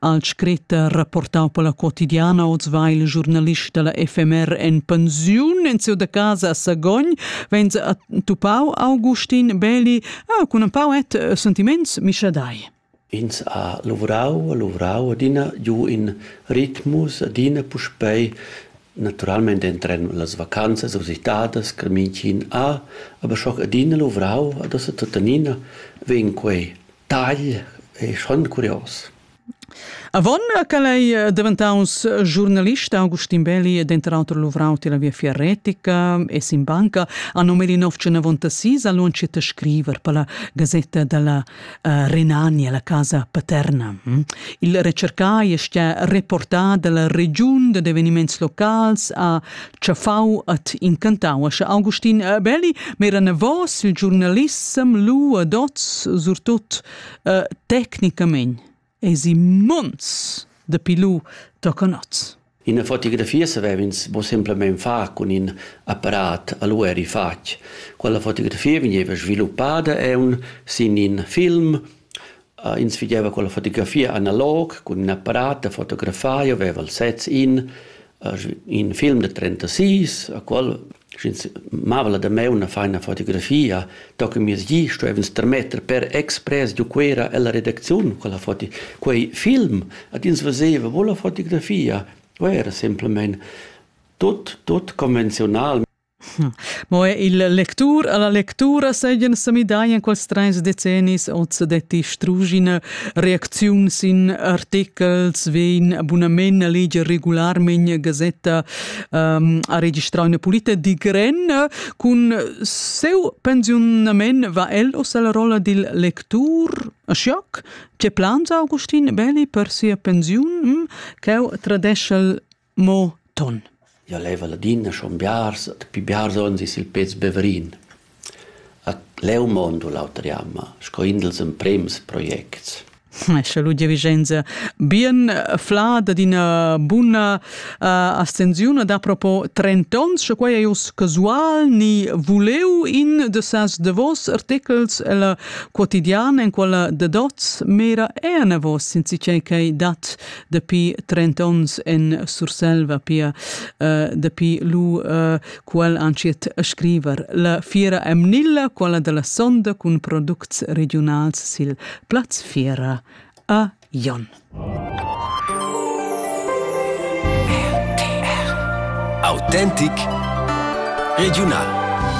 Al scrit rapportau per la quotidiana oz va il giurnalist dalla FMR en pensiun en seu da casa a Sagogn, vens a tupau Augustin Beli, ah, cun un pau et eh, sentiments mischadai. Ins ha lavorau, lavorau adina giu in ritmus, adina puspei naturalmente entren las vacanzas usitadas che München ha, aber schon adina lavorau, adesso tuttenina vegn quei Tagl ei schon curios. Avon che lei eh, diventaus eh, giornalista, Augustin Belli, eh, denter auter luvrau tilla viafia retica e sin banca, a nomeli nov sis allunci te scriver per la gazetta della uh, Renania, la casa paterna. Hm? Il recercai è stia reportà dalla regiun de eveniments locals a tschaffau et incantau ascha Augustin Belli, mera nevos il giornalissem lu ad oz surtut uh, tecnicament es i monts de pilu tocan oz. In fotografia savev'ins bo semplamein far cun in apparat, allora eri fatg. Quella fotografia vegniva sviluppada eun sin in film Ins figeva con la fotografia analog, cun ün apparat da fotografar, io veva il sez in, in film da trentasis, a qual, sch'ins mava la damaun a far üna fotografia, tochen miez di stuev'ins termetter per expres giu Cuera ella redacziun quella foto. Quei film ad ins veseva mo la fotografia, o era semplamein tut, tut convenziunal. Mo er il lectur alla lectura seigien se midai in quels treis decennis oz detti strugine reacziuns in articels vein abunament leger regularmen gazetta um, a registrau una pulita di gren cun seu pensiunament va el os alla rolla dil lectur Schock ce plans Augustin Belli per sia pensiun mm, cheu tradeschel Mo ton. Jo leva ladina schon biars, et pi biars onns is il pez Beverin. A leu mondo l'auter jamma, sco indels emprems projects. Esce Ludia Vicenza, bien fla da d'ina buna uh, astensiun da propo 30 ons, sche quai è jos casual ni vuleu in de sas de vos articles el quotidian en quella de dots mera è na vos since che che dat dapi 30 ons en Surselva, pia uh, dapi lu uh, qual anciet scriver. La fiera emnilla, quella della sonda cun products regionals sil plaz fiera a Jon. Autentic regional